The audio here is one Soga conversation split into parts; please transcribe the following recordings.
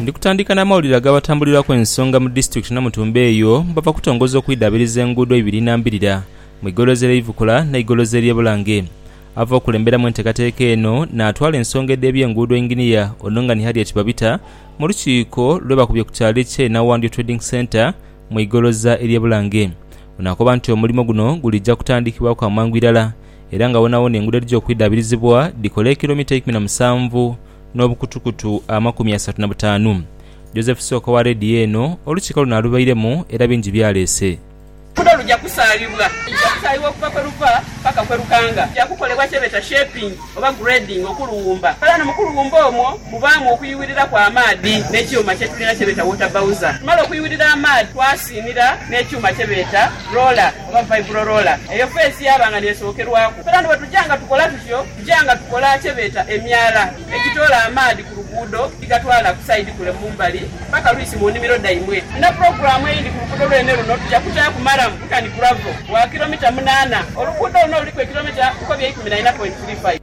Ndi kutandika na mawulire agabatambuliraku ensonga mu disitulikiti Namutumba eyo bava kutongoza okwidabiriza enguudo ibiri nambirira mu igolozi erye Ivukula ne igolozi erye Bulange. Ava okulemberamu entekateka eno natwala ensonga edhebye nguudo Engineer Onongani Harriet Babita mu lukiiko lwebakubye ku kyalo ekye Nawandyo Trading Centre mu igoloza erye Bulange. Ono akoba nti omulimo guno gulija kutandikibwaku amangu irala era nga wonawona enguudo edhija okwidhaabirizibwa dhikola ekilomita eikumi na musanvu n'obukutukutu amakumi asatu na butaanu. Joseph Sooka owa leediyo eno, Olukiiko luno alubairemu era bingi byaleese. Oluguudo luja kusaalibwa. Luja kusaalibwa okuva kwe luva paka kwe lukanga. Luja kukolebwa kyebeeta shaping oba grading okuluwumba. Era ghano mu kuluwumba omwo mubaamu okuyuwiriraku amaadhi n'ekyuma kye tulina kyebeeta water bowser. Tumala okuyuwirira amaadhi twasiinira n'ekyuma kyebeeta roller. oba vibro roller, eyo feesi yaaba nga n'esookerwaku. Fena ni bwe tuja nga tukola tutyo, tuja nga tukola kye beeta emyala egitoola amaadhi ku luguudo dhigatwala ku sayidi kule mu mbali paka lwisi mu nnimiro dhaimwe. Ni na pulogulaamu eyindi ku luguudo lwene luno, tuja kutaaku maramu nkani gravel wa kiromita munaana. Oluguudo luno luliku ekiromita nkobi eikumi na ina pointi tiri faifi.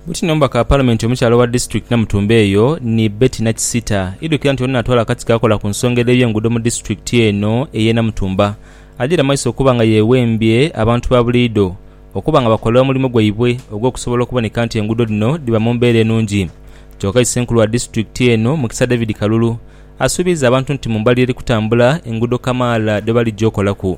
Bwityo ni omubaka wa Palamenti omukyala owa disitulikiti Namutumba eyo ni Betty Nakisita idhukira nti ono natwala akakiiko akakola ku nsonga edh'ebyenguudo mu disitulikiti eno ey'e Namutumba adhire maiso okuba nga yewembye abantu ba buliidho okuba nga bakola omulimo gwaibwe ogw'okusobola okuboneka nti enguudo dhino dhiba mu mbeera enungi. Kyoka isenkulu wa disitulikiti eno Mukisa David Kalulu asuubiiza abantu nti mu mbali eri kutambula enguudo kamaala dhebaligya okolaku.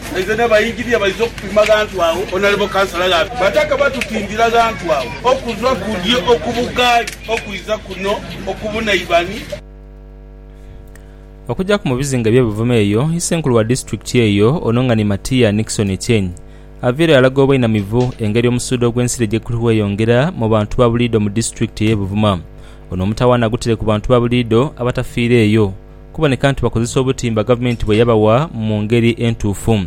Nze ne baingini abaiza okupima ghantu agho Onalebo Kansala Ghabi Bataka batutindira ghantu agho okuva kudyo okubugaali okwiza kuno okubunaibani. Okujaku mu bizinga ebye Buvuma eyo Isenkulu wa Disitulikiti eyo ono nga ni Matia Nickson Echeng aveire alaga obwainamivu engeri omusuudo ogw'ensiri gyeguli ghweyongera mu bantu ba buliido mu Disitulikiti eye Buvuma. Ono omutawaana agutire ku bantu ba buliido abatafiira eyo. kuboneka nti bakozesa obutimba gavumenti bwe yabawa mu ngeri entuufu.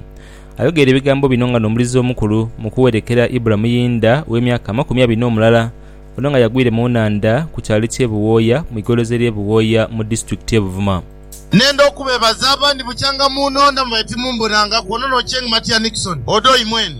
Ayogeire ebigambo bino nga n'omulizi omukulu mu kuwerekera Ibra Muyinda ow'emyaka amakumi abiri n'omulala, ono nga yagwire mu nhandha ku kyalo ky'e Buwooya mu igolozi ery'e Buwooya mu disitulikiti y'e Buvuma. Nenda okubebaza abandi bukyanga mu nonda mwe timumbonanga kwono no cheng matia Nixon Odoi mwene.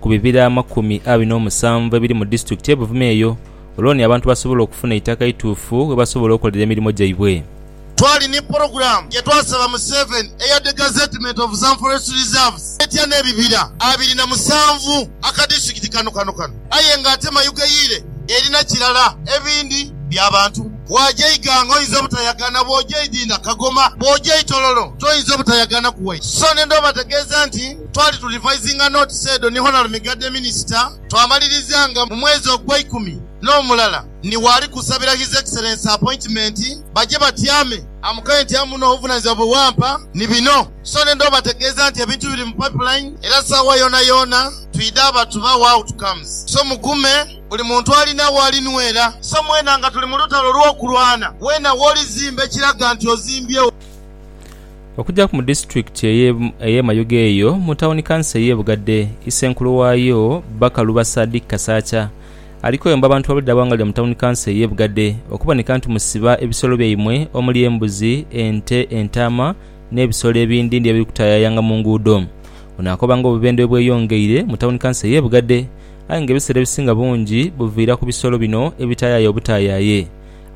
ku bibira amakumi abiri n'omusanvu ebiri mu disitulikiti ye Buvuma eyo olwoni abantu basobole okufuna eitaka eituufu we basobola okolera emirimo gyaibwe. Twali ni pulogulaamu ye twasaba Museveni eya The Gazettement of Some Forest Reserves etya n'ebibira abiri na musanvu aka disitulikiti kano kano kano aye nga ate mayugeyiire erina kirala ebindi bya bantu. Bw'aja Iganga oyinza obutayagana, bw'oja Idinda, Kagoma, bw'oja Itololo toyinza obutayagana ku White. Sso ne ndhobategeeza nti. Twali tu revising notes edho ni Honal Migadde Minister, twamaliriza nga mu mwezi ogweikumi nomulala ni waali kusabira His Excellency appointment baje batyame. Amukaire nti amu no obuvunanizibwa bwe wampa ni bino so nenda obategeeza nti ebintu biri mu pipeline era saawa yoona yoona twidha abatuba wa outcomes so mugume buli muntu alina waali nwera so mwena nga tuli mu lutalo lwokulwana weena woli zimba ekiraga nti ozimbye Okugyaku mu disitulikiti ey'e Mayuge eyo mu tawuni kanso ey'e Bugadhe, Isenkulu waayo, Bakaluba Sadik Kasaakya, ali kweyomba bantu ba buliidha bwangalira mu tawuni kanso ey'e Bugadhe okuboneka nti musiba ebisolo byaimwe omuli embuzi, ente, entaama n'ebisolo ebindindi ebiri kutayayanga mu nguudo. Ono akoba nga obubendhe bwebweyongeire mu tawuni kanso ey'e Bugadhe aye nga ebiseera ebisinga bungi buviira ku bisolo bino ebitayaya obutayaye.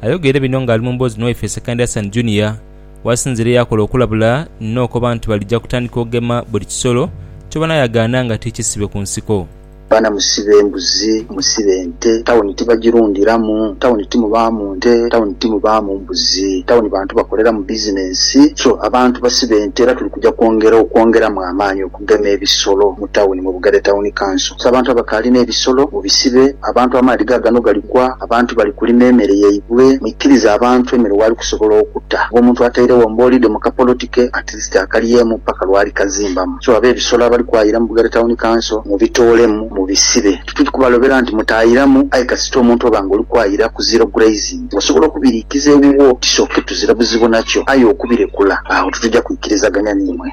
Ayogeire bino ng'ali mu mboozi ni waife Ssekandi Hassan Junior, Wasinzira eyakola okulabula n'okoba nti balija kutandika okugema buli kisolo kyobona yagaana nga ti kisibe ku nsiko. Baana musibe embuzi, musibe ente, tawuni tibagirundhiramu, tawuni timubaamu nte, tawuni timubaamu mbuzi, tawuni bantu bakoleramu bizinensi, so abantu basibe nte era tuli kuja kwongera okwongeramu amaani gema ebisolo mu tawuni mu Bugadha Tawuni Kanso. So abantu abakaali n'ebisolo mubisibe abantu amaadhi gaagano galigwa, abantu bali kulima emere yaibwe, mwikirize abantu emere waali kusobola okuta nga omuntu atairegho mbolide mu kapoloti ke at least akalyemu paka lwali kazimbamu so ab'ebisolo abali kwayira mu Bugadha Tawuni Kanso mubitoolemu mubisibe. Tituli kubalobera nti mutaayiramu aye kasita omuntu oba nga oli kwayira ku zero grazing osobola okubiriikiza ewuwo kisoke tuzira buzibu nakyo aye okubirekula agho tituja kwikirizaganya niimwe.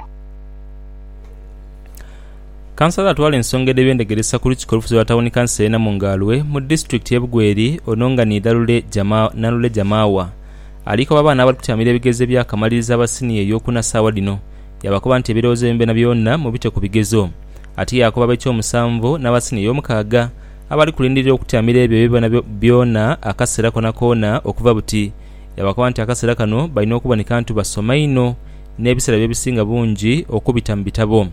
Kansala atwala ensonga edh'ebyendegeresa ku Lukiiko olufuzi olwa Tawuni Kanso e Namungaalwe mu disitulikiti ye Bugweri ono nga ni Dhalule Nalule Jamaawa ali koba abaana abali kutyamira ebigezo ebyakamaliriza aba siniya ey'okuna saawa dhino yaabakoba nti ebirowoozo byaimwe byonabyona mubite ku bigezo ate yaakoba ab'ekyomusanvu n'aba siniya ey'omukaaga abali kulindirira okutyamira ebyo byonabyona akaseera konakoona okuva buti yaabakoba nti akaseera kano balina okuboneka nti basoma inho n'ebisera bye bisinga bungi okubita mu bitabo.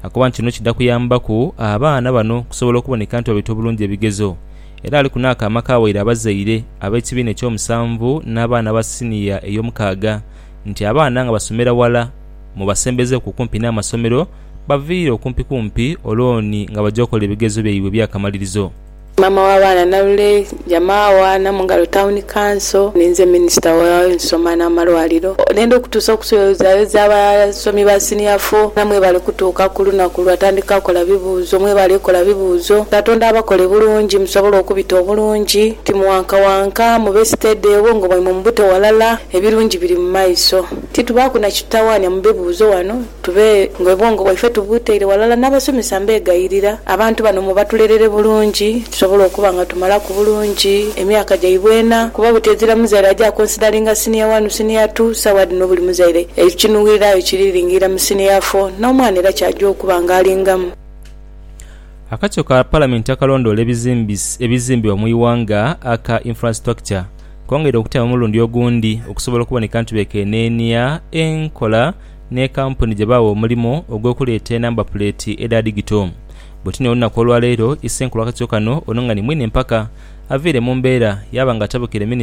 Akoba nti kino kidha kuyambaku abaana bano okusobola okuboneka nti babaita obulungi ebigezo. Era aliku n'aka amaka waire abazaire ab'ekibiina eky'omusanvu n'abaana ba siniya ey'omukaaga nti abaana nga basomera ghala mubasembezeeku kumpi n'amasomero baviire okumpikumpi olwo ni nga baja okola ebigezo byaibwe eby'akamalirizo. Maama wa baana Nalule Jamaawa, Namungalo Town Council. Ninze Minisita w'ensoma n'amalwaliro. Nenda okutuusa okusoyozayoza abasomi ba Senior Four. Era mwebale kutuuka ku lunaku lwatandika kola bibuuzo. Mwebale kola bibuuzo. Katonda abakole bulungi musobole okubita obulungi. Timuwankawanka, mube steady, obwongo bwaimwe mubute ghalala. Ebirungi biri mu maiso. Titubaaku na kitutawaanya mu bibuuzo ghano. Tube ng'obwongo bwaife tubuteire ghalala n'abasomesa mbeegayirira abantu bano mubatulelere bulungi tusobole okuba nga tumalaku bulungi emyaka gyaibwe ena kuba buti ezira muzaire aja akonsidalinga siniya wanu, siniya tu, sawa dhino buli muzaire ekinuwira aye kiri lingiira mu siniya fo n'omwana era ky'aja okuba nga alingamu. Akakiiko ka Palamenti akalondoola ebizimbibwa mu ighanga aka Infrastructure kongeire okutema omulundi ogundi okusobola okuboneka nti bekeneenia enkola n'e kampuni gye baawa omulimo ogw'okuleeta enamba puleeti edha digito. Bwetyo n'olunaku olwaleero, Issenkulu w'akakiiko kano ono nga ni mwine mpaka, aviire mu mbeera yaaba nga atabukire Minisita